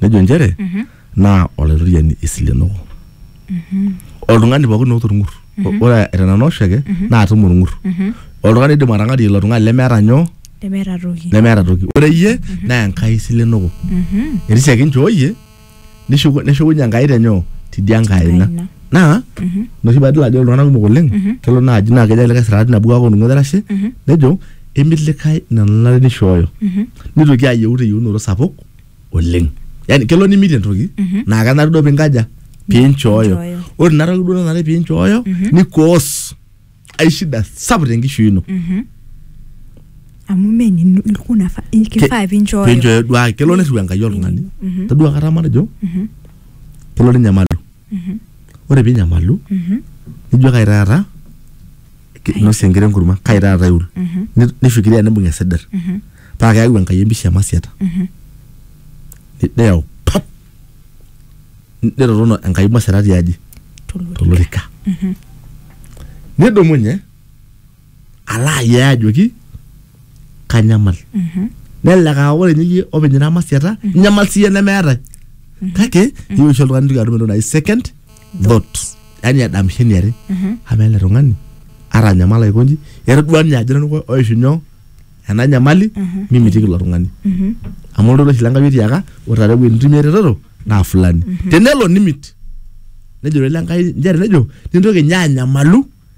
nejo nchere naa olaitoriani esilenoko oltung'ani pookin oota orng'ur ore tenanu oshiake naa atum orng'ur oltung'ani oidim atang'arie ilo tung'ani lemeeta nyoo nemeeta toki nemeeta toki ore iyie naa enkai isilenoko etii siake inchooyie nishuku- neshukunye enkai tenyoo tidia nkae aina Aina. naa ina oshi paadol ajo ore iltung'anak kumok oleng kelo naaji naa kejo likae sirati nabo kake oltung'ani oitashe nejo emi likae ina nanare nishooyo nitoki ayieu teyieunoto sapuk oleng yani kelo nimitie entoki Mhm. naa kenare duo pinkaja pinchooyo Pinchooyo. ore ina toki duo nanare pinchooyo Mhm. nikoos ai shida sapuk tenkishui ino Mhm. amu menino ilkuna fa- kifaa pinchooyo pinchooyo duake kelo nirriu enkai oltung'ani Mhm. taduo kata matejo Mhm. kelo ninyamalu ore pinyamalu nijo kai taata nosie enkire enkurma kai taata iul Ni- nifikiria nibung esidir paa keyau enkai empisha emasiata Ni- neyau pap Ni- nirorono enkai masiata tiaji tolorika nidumunye alo ayee ajoki kanyamal nelelek aa ore ninye iyie openy ira masiata inyamal siyie nemeetae kake iyieu oshi oltung'ani nintoki atum entoki naji second thought yani edamisho eniare amaa ele tung'ani atanyamala aikonji etodua ninye ajo nanu oishu nyoo ena nyamali mimitiki ilo tung'ani amu oltoilo oshi lenkai otiaka ore taata ewueji nitumie eretoto naa fulani tenelo nimit nejo doi lenkai nchere nejo nintoki ninye anyamalu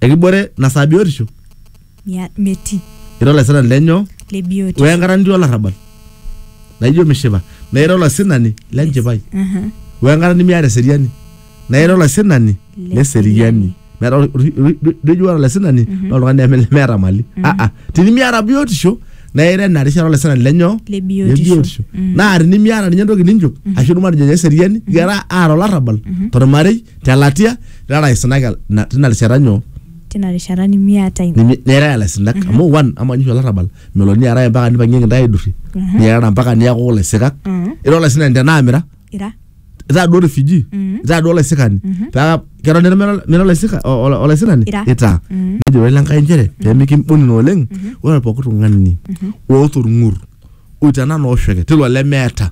ekibore na saa biotisho Ya, metii ira olaisirani lenyo le biotisho wenkata nitii olarrabal naijo mishipa na ira olasinani lenchipai Aha. wenkata nimiata eseriani na ira olasinani Le leseriani meeta ol- ol- ol- lijo ore olasinani na oltung'ani leme- lemeeta mali aa tinimiata biotisho na ira ina rishata olasinani lenyo Le biotisho. Mm. na tinimiata ninye entoki ninchop ashu matejo nye eseriani ira aata olarrabal tormarei te latia ira laisinak na- tina rishata nyoo tina rishata nimiata ina Nimi- nirara laisinak amu one ama nyisho olarrabal melo niaraya mpaka nipang'ieki ntae aidurri Mhm. niarara mpaka niaku laisinak Mhm. ira olaisinani tenaamira ira itaa duo refugee Mhm. itaa duo olaisikani Mhm. paa keton nira mira- mira olaisika- o- o- olaisinani Ira. itaa Mhm. nejo ore lenkai nchere pemikimbunina oleng ore pooki tung'ani oota orng'ur o tena na oshoke tilo lemeeta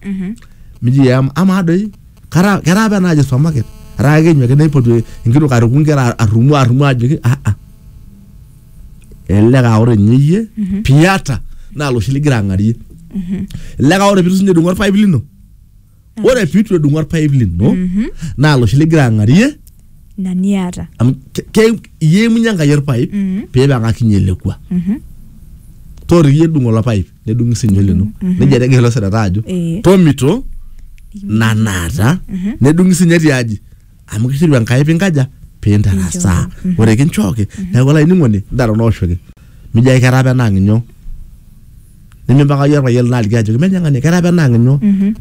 miji ya ama doi kara kera apa naaji supermarket ara ake nyoke naipotu enkitok aruku nkera arrumu arrumu ajoki ah ah elelek aa ore ninye iyie piata naa loshi ligira ang'arie elelek aa ore pitu sinye edung'o orpaip lino ore pitu edung'u orpaip lino naa loshi ligira ang'arie ina niata amu ke- ke- iyemunye enkai orpaip Mhm. pipang'akinye elekua Mhm. toriki edung olo paip nedung'i sinye lino nejia etegira ilo sereta ajo Eh. tomito nanaata nedung'i sinye tiaji amu kisiru enkai pinkaja pintarasaa ore kinchooki neeku olainining'oni ntara onooshoki mijo ake kera apa enaang inyo nimimpaka iyie orpayian lino aliki ajoki menye ng'ania kera apa enaang inyo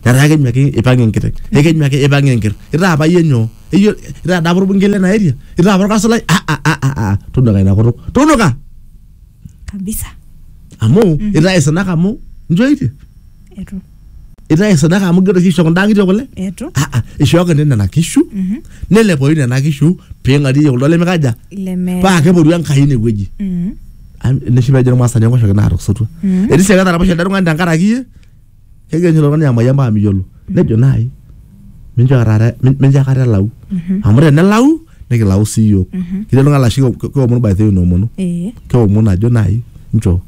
netaa kenyu ake ipang enkiteng ekenyu ake ipang enker itaa apa iyie nyoo Eyio- itaa dapa orbungei lena area itaa apa orkasulai ah, ah, ah, ah, ah. tunuka ina kutuk tunuka kabisa amu Mhm. itae sadaka amu njoitie etu itae sadaka amu gero kisho kunda ngitio kule etu ah ah ishooki nini nena kishu Mhm. nelepoyu nena kishu ping'arie kuldo lemekaja leme paa keporu enkai inewueji Mhm. Am- neshipa ejo irmaasani enkoshoki naatosotua Mhm. etii sii eketaraposhe ele tung'ani tenkaraki iyie kegira ninye ilo tung'ani amayian mpaka miyiolo nejo naai minchoo akata min- mincho akata elau amu tenelau nikilau sii iyiook ketii oltung'ani laa oshi ke- keomonu by the way inoomonu ee keomonu ajo naai nchoo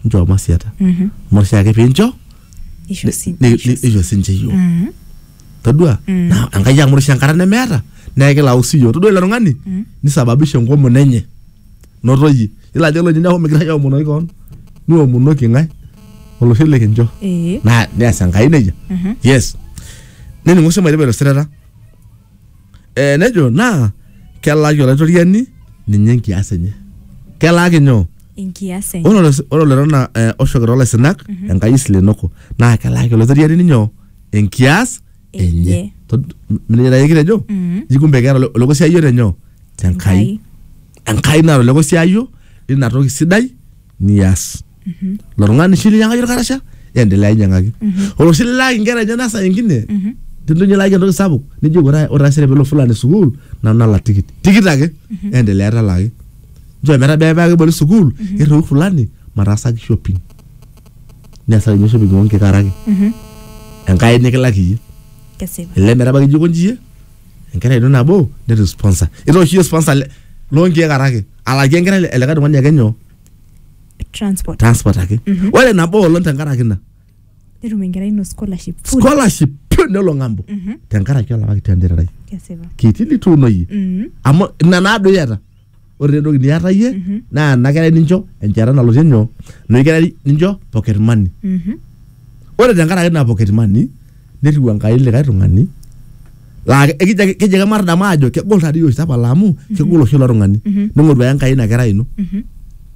nchoo masiata Mhm. amu ore oshiake piincho isho ni- si- ni- isho si- nisho sinche iyiook Mhm. todua naa enkai amu ore oshi enkata nemeeta naa ekilau sii iyiook todua ilo tung'ani nisababisha enkomono enye noto iyie ilo ajo oloinining'o neeku migira iyie aomonoki kewon niomonoki ng'ae olosho likincho ee naa neas enkai nejia Mhm. yes nening'u sii mairipa ilosirata eh, nejo naa kelaaki olaitoriani ninye enkias enye kelaaki nyoo enkias enye ore olos- ore olerona eh, oshoki toolaisinak enkai isilenoko naa kelaaki olaitoriani ninyo enkias enye. enye Tod- m- mnenye naye kitejo Mm. ji kumbe keeta ole- olekosiayio tenyoo tenkai enkai naata olekosiayio lina toki sidai nias lo tung'ani shi linyiang'aki olkarasha endelea inyiang'aki ore oshi lilaaki inkera enyena saa ingine tinto inye ilaaki entoki sapuk nijo ore ore taisere pelo fulani sukuul nanu nalak tikit tikit ake endelea talaaki nchoo metabaya paa keboli sukuul irriu fulani mataasaki shopping nesayu oshi ping'ua nkikaraki Mhm. enkai nikilak iyie Kesipa. ele metabaki ijo konji iyie enkerai ino nabo netu sponsor itoosho iyie sponsor le- loonkiek araki alakie enkerai ele- elikae tung'ani ake nyoo Transport. transport ake Mhm. ore nabo olong tenkaraki ina Netum enkerai ino scholarship. Full. scholarship pyo nelo ng'ambo Mhm. tenkaraki olapaki tentererai Kesipa. kiti lituunoyie Mhm. amu ina naado iyata ore taa entoki niata iyie Mhm. naa ena kerai nincho enchata nalotie nyoo enoshi kerai nincho pocket money Mhm. ore tenkaraki ina pocket money netiu enkai likae tung'ani laa ke- ekijo ake keji ake matadamu aajo kegol taadii oshi tapala amu kegol oshi ilo tung'ani Mhm. ning'oru ake enkai ina kerai ino Mhm.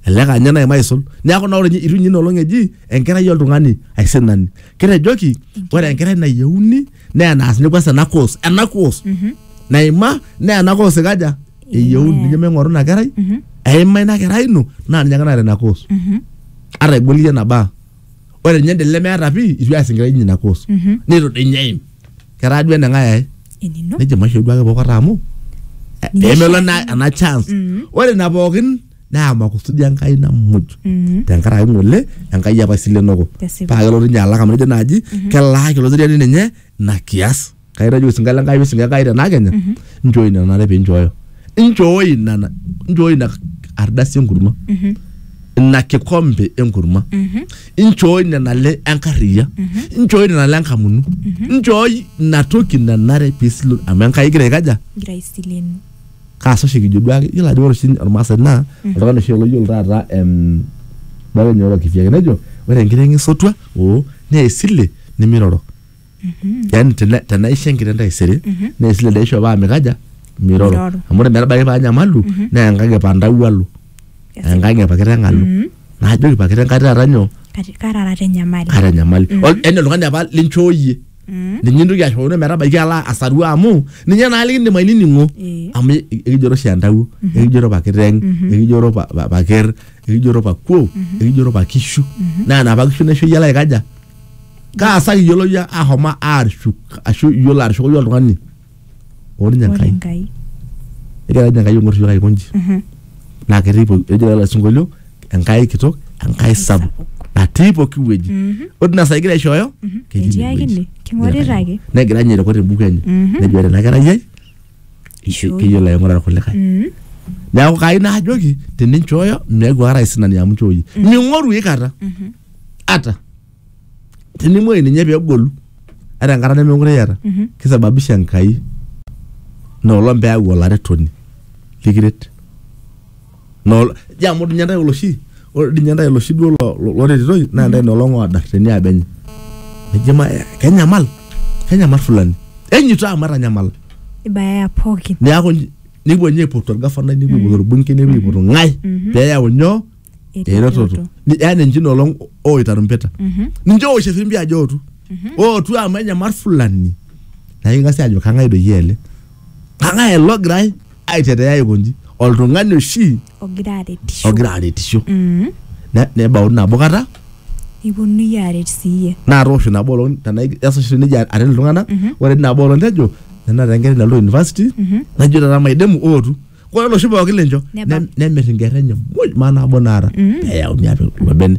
elelek aa ninye naima aisul neeku naa ore ninye itu ninye ina olong eji enkerai oltung'ani aisinani kitejoki ore enkerai nayieuni naa enaas ninye kwanza ena course ena course Mhm. naima naa ena course ikaja eyieuni Eh. ninye ming'oru ina kerai Mhm. eima ina kerai ino naa ninye ake naata ina course Mhm. ata egol iyie enabaa ore ninye ende lemeeta pii itu eas enkerai enye ina course Mhm. nitu dii ninye eim ketaa duo eneng'ae ae enino nejo maisho duake pokota amu eh, Ninye pemelo oshiake. ena ena chance Mhm. ore ina pookin naa makusudi enkai namuj Mhm. tenkaraki ng'ole enkai apa isilenoko Tesipa. paa kelotu ninye alak amu nejo naaji kelaaki ilo siriani ninye ina kias kaitaji osinka le Nkai osinka Enkai tena kenya nchoo ina nanare pee inchooyo inchoo ina na- inchoo ina ardasi enkurma ina kikombe enkurma inchoo ina nale enkarriya inchoo ina nale enkamunu inchoo ina toki nanare pee isilu amu Enkai igira aikaja Ngira aisilenu. kaasa oshi kijo duake iyiolo ajo ore oshi ormaasai naa oltung'ani oshi loyiolo taata em bae enye orokiti ake nejo ore enkiteng esotua oo nee esile nimiroro yani tena- tenaisho enkiteng taisere naa esile dai aisho paa mikaja miroro Miroro. amu ore metabaiki paa nyamalu naa enkang epandau alo enkang epakiteng alo naajoki pakiteng kati taata nyoo Kati- karara te nyamali kaata enyamali Ol- yani oltung'ani apa linchooyie ninye intoki ashoono metabaiki alo asaru amu ninye naa likindim ainining'o Eh. amu e- ekijoro oshi entawuo ekijoro pakiteng ekijoro pa- pa- paker ekijoro pakuo ekijoro pakishu naa napa kishu naisho iyie alo aikaja kaasaki iyiolo yie ahoma aarshuk ashu iyiolo arshuko yie oltung'ani oo ninye ore enkai enkai egira ninye enkai aing'or iyiook aikonji Mhm. naa ketii po- ejo lelo sinkolio enkai kitok enkai sapuk natii pooki wueji Mhm. ore ina saa egira aishooyo ketii Etii ine ake wueji. ine. King'orita Egira ake. negira ninye airoko te buku enye Mhm. nejo ore ena kerai ai Isho- keyiolo aing'ura irkulikae Mm. neeku kai naajoki teninchooyo meeku ara aisinani amu nchooyie ming'oru ikata Mhm. ata tenimuoyu ninye pegolu ata enkata nemekure iyata Mhm. kisababisha enkai noolong peyau olaretoni likiret Nol, ja amu dinye ntae oloshi ore dinye ntae oloshi duo lo- lo- loretitoi naa ntae nolong oodar teniaba enye nejo ma eh, kenyamal kenyamal fulani enyito amu etanyamala ibayaya pookin neaku nji- nepuo ninye aipotu orgafanai nepuo aipotu orbunke nepuo aipotu ng'ae peyau nyoo eretoto Ni- yaani nji nolong ooita rumpeta Mhm. ninche oosh efimbi ajo ootu ootu amu enyamal fulani naa king'asi ajo kang'ae doi ele kang'ae elogirae aitetea aikonji oltung'ani oshi ogira aretisho ogira aretisho Mm. Ne- nebauni nabo kata niponunui aret siiyie naa toosho nabo olong tenaa esashi nejia aret iltung'anak ore tina nabo olong tejo nena taa enkerai nalotu university najo taata maidimu ootu ore oloshi pooki lincho Neba. nem- nemir inkerra enye muj maa nabo naata peyauni apik ilo bene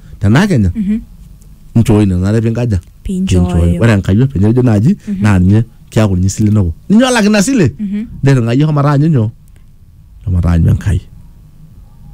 tenaa kenya nchooyi nena are pinkaja Pinchooyo. ore enkayiok penye ejo naaji naa ninye keaku ninye isilenoko ninye olak ina sile nirring'ayie homo taanyu nyoo homo taanyu enkai